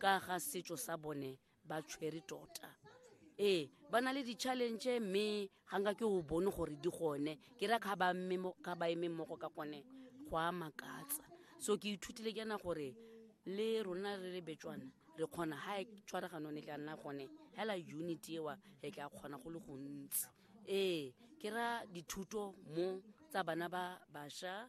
ka ga setso sa bone ba tshwere tota ee ba na le di-challenge mme ga nka ke o bone gore di gone ke ra ka ba emeng mogo ka gone go a makatsa so ke ithutile ke yana gore le rona re le betswana re kgona ga e tshwaraganong e tla nna gone hela unity ewa re tla kgona go le gontsi ee ke ra dithuto mo tsa bana ba basha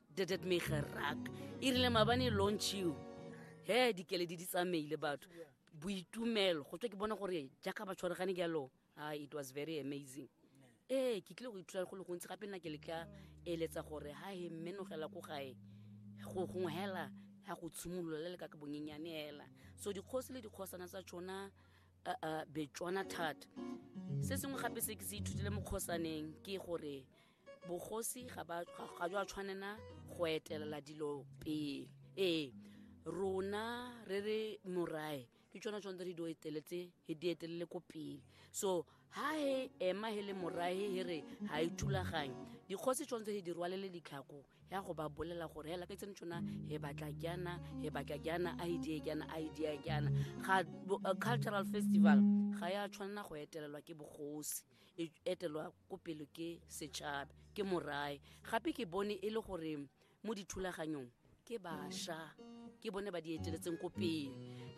dit het my geraak. Irile mabane launch you. He dikeledi di tsamaile batho. Boitumelo go tswe ke bona gore jaaka ba tshwaregane jalo. Ah it was very amazing. Eh ke tlile go ithuta go le gontsi gape nna ke le ka eletsa gore ha he menogela ko gae go gongwe hela ya go tshimolola le ka ka bonyenyane hela. So dikgosi le dikgosana tsa tšona uh, uh, betswana thata. Se sengwe gape se ke se ithutile mo kgosaneng ke gore bogosi ga ba ga jwa tshwanela go etelela dilo pele ee rona re re morae ke tsona tsone re di eteletse he di etelele ko pele so ha he ema he le morae he re ha e thulaganye dikgosi tshwanetse he di rwalele ditlhako ya go ba bolela gore hela ke tsene tsona he batla kyana he batla kyana a idea kyana a idea kyana ga cultural festival ga ya tshwanela go etelelwa ke bogosi e etelwa ko pele ke setšhaba ke morae gape ke bone e le gore mo dithulaganyong ke bašwa ke bone ba di eteletseng ko pele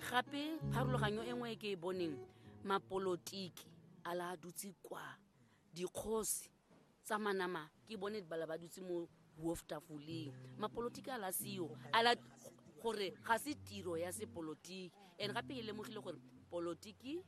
gape pharologanyo e nngwe e ke e boneng mapolotiki a la a dutse kwa dikgosi tsa manama ke bone bala ba dutse mo wolf tafoleng mapolotiki a la seo a la gore ga se tiro ya sepolotiki and gape e lemogile gore polotiki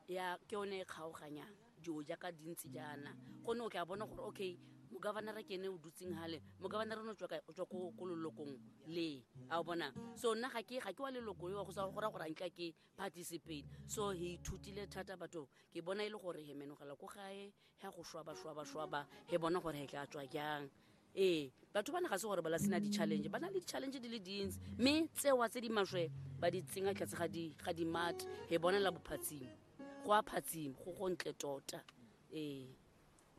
ya ke yone e kgaoganyang dilo jaaka dintsi jaana gonne o tla bona gore okay mogavanara ke ene o dutseng gale mogavanara ne o tswa ko lolokong le a o bona so nna ga ke wa leloko yo go sa gora gore anka ke participate so he ithutile thata batho ke bona e le gore he menogela ko gae ya go shwaba-shwaba-shwaba he bona gore he tla tswa jang ee batho ba ne ga se gore ba la sena di-challenge ba na le di-challenge di le dintsi mme tsewa tse di maswe ba di tsenya tlase ga di- ga dimate he bonela bophatsimo go a phatsimo go go ntle tota ee